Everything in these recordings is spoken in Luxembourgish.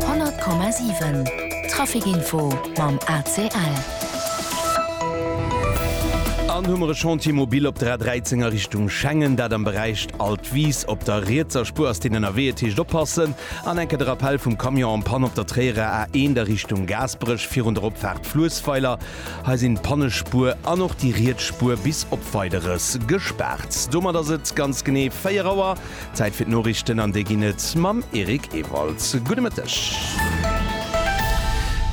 100,7 Traficinfo mam ACL. An hu mer e Chantier mobil op der A13 a Richtung Schengen, dat am Beräich Alt Wies. Op der rietser Spuer ass deen ënnerwee, et heescht oppassen. An enke de Rappell vum Camion en panne op der Tréierer A1 a Richtung Gaasperech virun der Opfaart Fluessweiler. Hei sinn d'Pannespuer an och déi riets Spuer bis op Weideres gespaart. Domat ass et ganz genee 4 Auer. Zäit fir d'Noriichten an déi ginn et mam Eric Ewald. Gudde Mëtteg.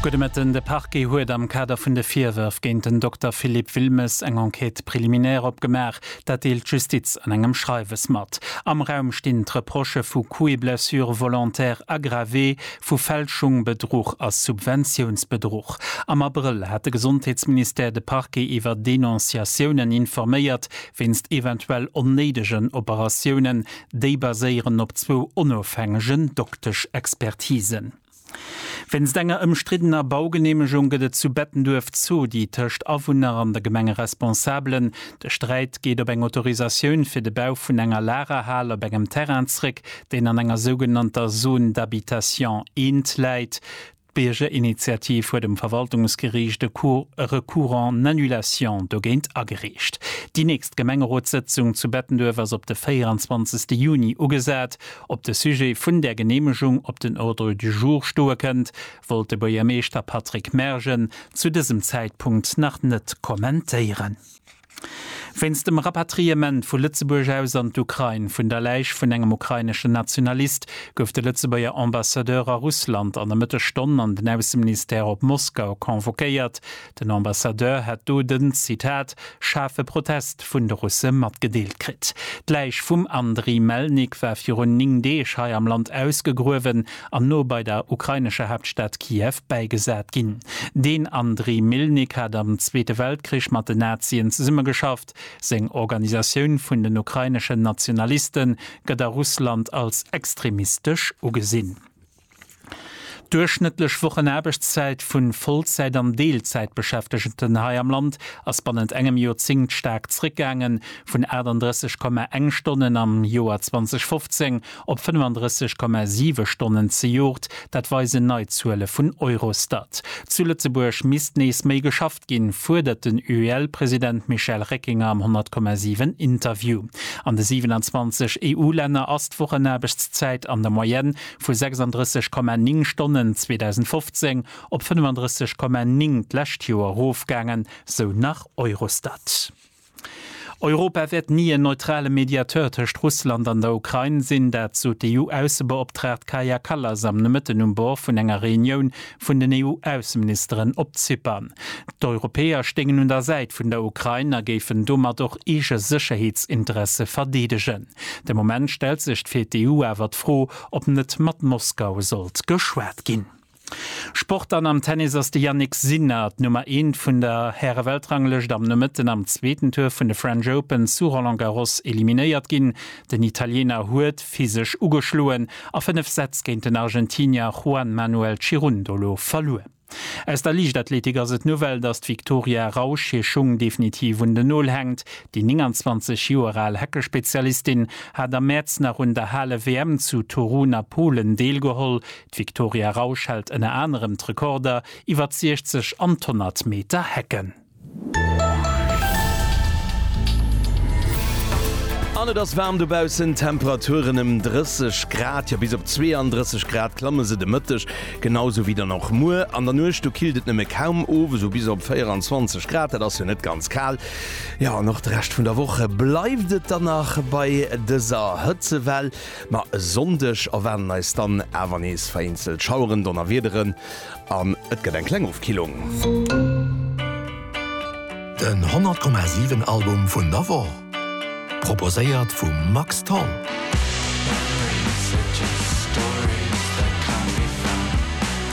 Gudde Mëtten. De Parquet huet am Kader vun de Virwërf géint den Dokter Philippe Wilmes eng Enquête préliminaire opgemaach. Dat deelt d'Justiz an engem Schreiwes mat. Am Raum stinn d'Reprochë vu Coups et blessures volontaires aggravés, vu Fälschung, Bedruch a Subventiounsbedruch. Am Abrëll hat de Gesondheetsministère de Parquet iwwer Denonciatiounen informéiert, wéinst eventuell onnéidegen Operatiounen, déi baséieren op zwou onofhängegen Dokteschexpertisen. Wéinst enger ëmstriddener Baugeneemegung gëtt et zu Bettenduerf Zodi tëscht Awunner an de Gemengeresponsabelen. De Sträit geet op eng Autorisatioun fir de Bau vun enger Lagerhal op engem Terrain zréck, deen an enger sougenannter Zone d'habitation I läit. D'Biergerinitiativ huet um Verwaltungsgeriicht e Recours en annulation dogéint agereecht. Déi nächst Gemengerotssëtzung zu Bettenduerf ass op de 24 Juni ugesat. Ob de Sujet vun där Geneemegung op den Ordre du jour stoe kënnt, wollt de Buergermeeschter Patrick Mergen zu dësem Zäitpunkt nach net kommentéieren. Wéinst dem Rapatriement vu Lëtzebuerg aus an d'Ukrain vun der Läich vun engem ukraineschen Nationalist gouf de Lëtzebuerger Ambassadeur a Russland an der Mëttesstonn an den Ausseministère op Moskau convoquéiert. Den Ambassadeur hätt do den, Zitat, schaarfe Protest vun de Russe matgedeelt kritt. D'Läich vum Andriy Melnik war virun 9 Deeg hei am Land ausgegruewen. an no bei der ukrainescher Haaptstad Kiew bäigesat ginn. Den Andriy Mylnyk hat am Zweete Weltkrich mat den Nazien zesummegeschafft. Seng Organisatioun vun den ukraineschen Nationaliste gëtt a Russland als extremistesch ugesinn. D'duerchschnëttlech Wochenaarbechtszäit vu Vollzäit an Deelzäitbeschäftegten hei am Land ass bannent engem Joerzéngt staark zréckgaangen, vun 38,1 Stonnen am Joer 2015 op 35,7 Stonnen zejoert, dat weisen nei Zuele vun Eurostat. Zu Lëtzebuerg misst nees méi geschafft ginn, fuerdert den UEL-President Michel Reckinger am 100,7 Interview. An de 27 EU-Länner ass d'Wochenaarbechtszäit an der Moyenne vu 36,9 Stonnen 2015 op 35,9 d'lescht Joer erofgaangen, sou nach Eurostat. Europa wäert ni en neutrale Mediateur tëscht Russland an der Ukrain sinn. Dat sot d'EU-Aussebeoptraagt Kaja Kallas am Nomëtten um Bord vun enger Reunioun vun den EU-Ausseministeren op Zypern. D'Europäer stéingen un der Säit vun der Ukrain a géifen domat och eege Sécherheetsinteresse verdeedegen. De Moment stellt sech fir d'EU awer d'Fro, ob net mat Moskau sollt geschwat ginn. Sport Dann am Tennis ass de Jannik Sinner, d'Nummer eent vun der Häre-Weltranglëscht, am Nomëtten am zweeten Tour vun de French Open zu Roland Garros eliminéiert ginn. Den Italiener huet physesch ugeschloen a fënnef Sätz géint den Argentinier Juan Manuel Cirundolo verluer. Aus der Liichtathletik ass et d'Nouvelle, dass d'Victoria Rausch hir Schung definitiv un den Nol hänkt. Déi 29 Joer al Hecke-Spezialistin hat am Mäerz nach un der Hale-WM zu Torun a Polen deelgeholl, D'Victoria Rausch hält ënner anerem d'Rekorder iwwer d'Siechzeg an d'Honnert Meter Hecken. An et ass waarm dobaussen, d'Temperaturen ëm 30 Grad, jo bis op 32 Grad klamme se de Mëtteg, genau esou wéi dann och muer. An der Nuecht, do killt et nëmme kaum of, esou bis op 24 Grad, dat ass jo net ganz kal. Jo, an och de Rescht vun der Woch bleift et dann nach bei dëser Hëtzewell. Ma e Sonndeg erwaarden eis dann awer nees vereenzelt Schaueren, Donnerwiederen an et gëtt eng kleng Ofkillung. Den 100,7 Album vun der Woch, proposéiert vum Max Tholl.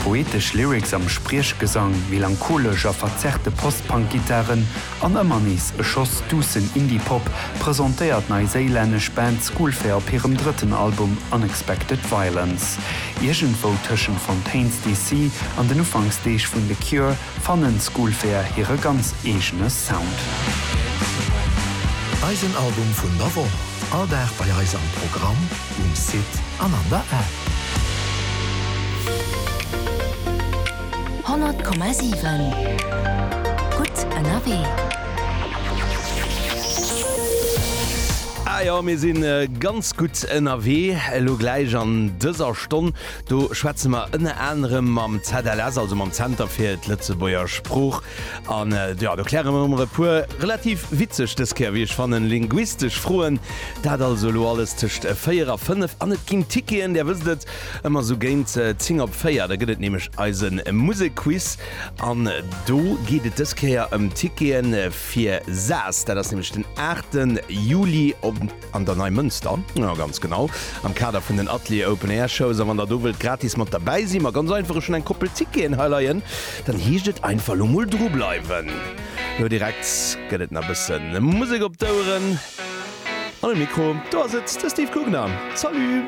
Poetesch Lyrics am Spriechgesang, melancholesch a verzerrte Post-Punk-Gittaren. An ëmmer nees e Schoss duussen Indie-Pop presentéiert d'neiséilännesch Band Schoolfair op hirem drëtten Album Unexpected Violence. Iergendwou tëschent Fontaines DC. an den Ufanksdeeg vun The Cure fannen Schoolfair hire ganz eegene Sound. Eisen Album vun der Woch, all Dag bei eis am Programm, um Site an an der App. 100,7 Gutt ënnerwee. Ah jo, mir sinn ganz gutt ënnerwee elo gläich. An dëser Stonn do schwätze mer ënner anerem mam ZLS, also mam Zenter fir d'Lëtzebuerger Sprooch. An jo, do kläre mer emol e puer relativ witzeg, dës Kéier wéi ech fannen, linguistesch Froen. Dat also elo alles tëscht 4 a 5. An et ginn Ticketen, Där wësst et. Ëmmer esou géint 10 op 4, da gëtt et nämlech eise Musekquiz an do geet et dës Kéier ëm Ticketen fir Saas. Dat ass nämlech den 8 Juli an der Neimënster, jo ganz genau, am Kader vun den Atelier Open Air Shows. A wann der do wëllt gratis mat derbäi sinn, ma ganz einfach, ech hunn eng Koppel Ticketen hei leien, dann heescht et einfach elo mol dru bleiwen. Elo direkt gëtt et nach e bësse Musek op d'Oueren an um Mikro, do ass et de Steve Gugner. Salut!